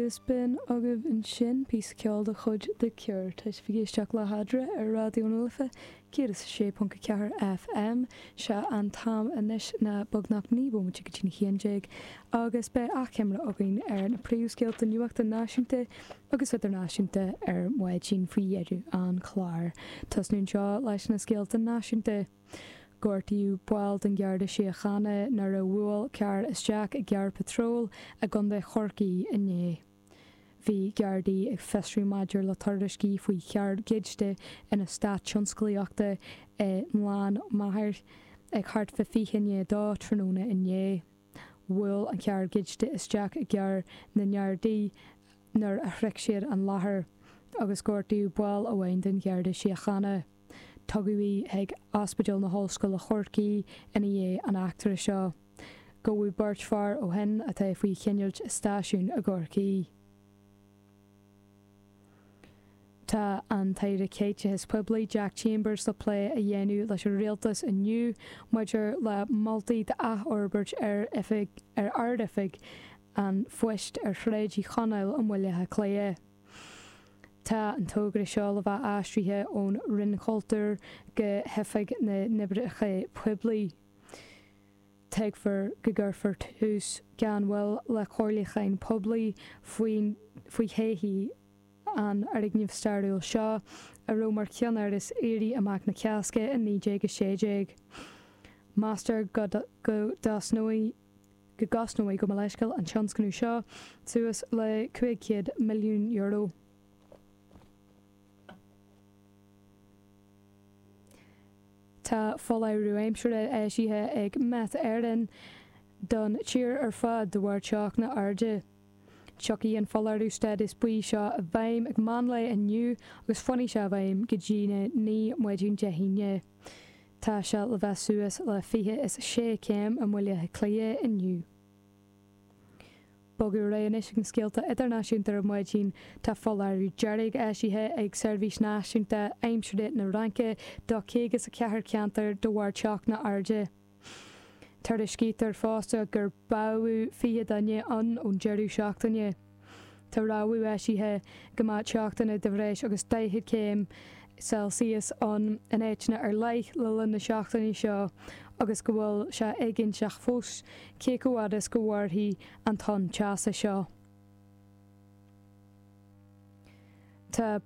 Is sin agaibh ansin, píosa ceoil de chuid The Cure. Tá sibh ag éisteacht le hEadra ar Raidió na Life 106.4 FM. Sé an t-am anois ná beagnach 9 bhomaite go dtí na 11 agus beidh achoimre againn ar na príomhscéalta nuachta náisiúnta agus idirnáisiúnta ar maidin faoi dheireadh an chláir. Tosnú anseo leis na scéalta náisiúnta. Gortaíodh baill den Gharda Síochána nuair a bhuail carr isteach i gcarr patróil i gContae Chorcaí inné. Bhí Gardaí ag fiosrú maidir le tuairiscí faoi charr goidte in eastát tionsclaíochta i nGleann Maghair ag thart fá 20 i ndiaidh a 2 tráthnóna inné. Bhuail an carr goidte isteach i gcarr na nGardaí a. nuair a shroich siad an láthair agus gortaíodh ball amháin den Gharda Síochána. Tugadh í chuig Ospidéal na hOllscoile Chorcaí ina dhiaidh an eachtra seo. Gabhadh beirt fear ó shin atá faoi choinneáil i stáisiún i gCorcaigh. Tá an tAire Caiteachais Phoiblí Jack Chambers le plé a dhéanamh leis an Rialtas inniu maidir le moltaí d'athfhorbairt ar oifig, ar Ard-Oifig an Phoist ar Shráid Uí Chonaill i mBaile Átha Cliath. Tá an togra seo le bheith aistrithe ón Roinn Chultúir go hOifig na nOibreacha Poiblí. Tuigtear go gcuirfear tús gan mhoill le comhairliúcháin poiblí faoi thodhchaí. an fhoirgnimh stairiúil seo, a raibh mar cheannáras Éirí Amach na Cásca in 1916. Meastar go go gcosnóidh, gabh mo leithscéal, an tionscnamh seo suas le €500 milliún. Tá foláireamh aimsire eisithe ag Met Éireann don tír ar fad de bharr teochtanna arda. Tiocfaidh an foláireamh stádas buí seo i bhfeidhm ag meán lae inniu agus fanfaidh sé i bhfeidhm go dtí na naoi maidin Dé hAoine. Tá sé le bheith suas le fiche is a sé céim i mBaile Átha Cliath inniu. Bogadh ar aghaidh anois ag na scéalta idirnáisiúnta ar maidin. Tá foláireamh dearg eisithe ag Seirbhís Náisiúnta Aimsire na Fraince do chaoga is a ceathair ceantar de bharr teochtanna arda. Tuairiscítear fosta gur báthadh 20 duine ann ón deireadh seachtaine. Tá rabhadh eisithe go mbeadh teochtanna de bhreis agus 40 céim Celsius ann in áiteanna ar leith le linn na seachtaine seo agus go bhfuil sé éiginnteach fós cé chomh fhad is go mhairfidh an tonn teasa seo. Tá.